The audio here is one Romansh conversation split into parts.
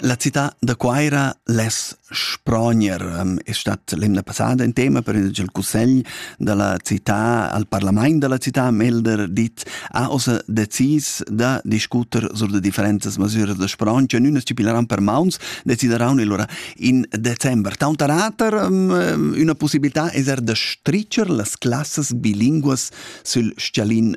La cità da Cuaira less sprogner ehm, è stat l'emna passada in tema per il cussegl da la cità al parlament da la cità Melder dit ha ossa decis da discuter sur da differentas masuras da sprong che nun stipileran per mauns decideranno allora in december. Tauntarater ehm, una possibilità è er da stricer las classes bilinguas sul scialin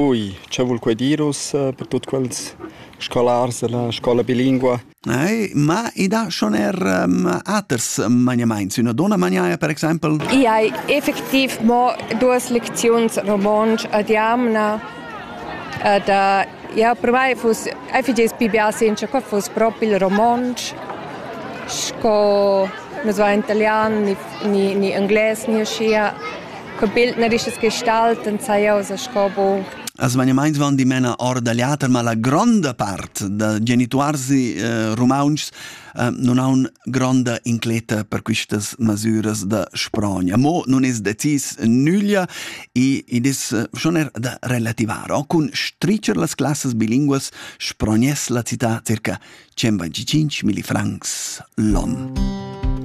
Ui, che vul quei dir ussa per tut quels scolars dalla scola bilingua? Eh, ma i dà schon er um, aters maniamaints, üna donna maniaia per exaimpel? I hai effektiv mo duas lecziuns romontsch ad jamna. Ed uh, ja, per mai fuss effigies pi bia sincer che fuss propi il romontsch sco nus va in italian ni, ni, ni englais ni uschia. Co bild na rischas gestalten saiosa sco bo? As magnamaints van dimena or da liater, ma la gronda part da genituarsi eh, rumauntschs eh, non haun gronda incleta per quistas masüras da sprogna. Mo nun es decis nüglia e id es eh, schon er da relativar. O cun stricher las classas bilinguas sprogness la città circa 125 milli francs l'on.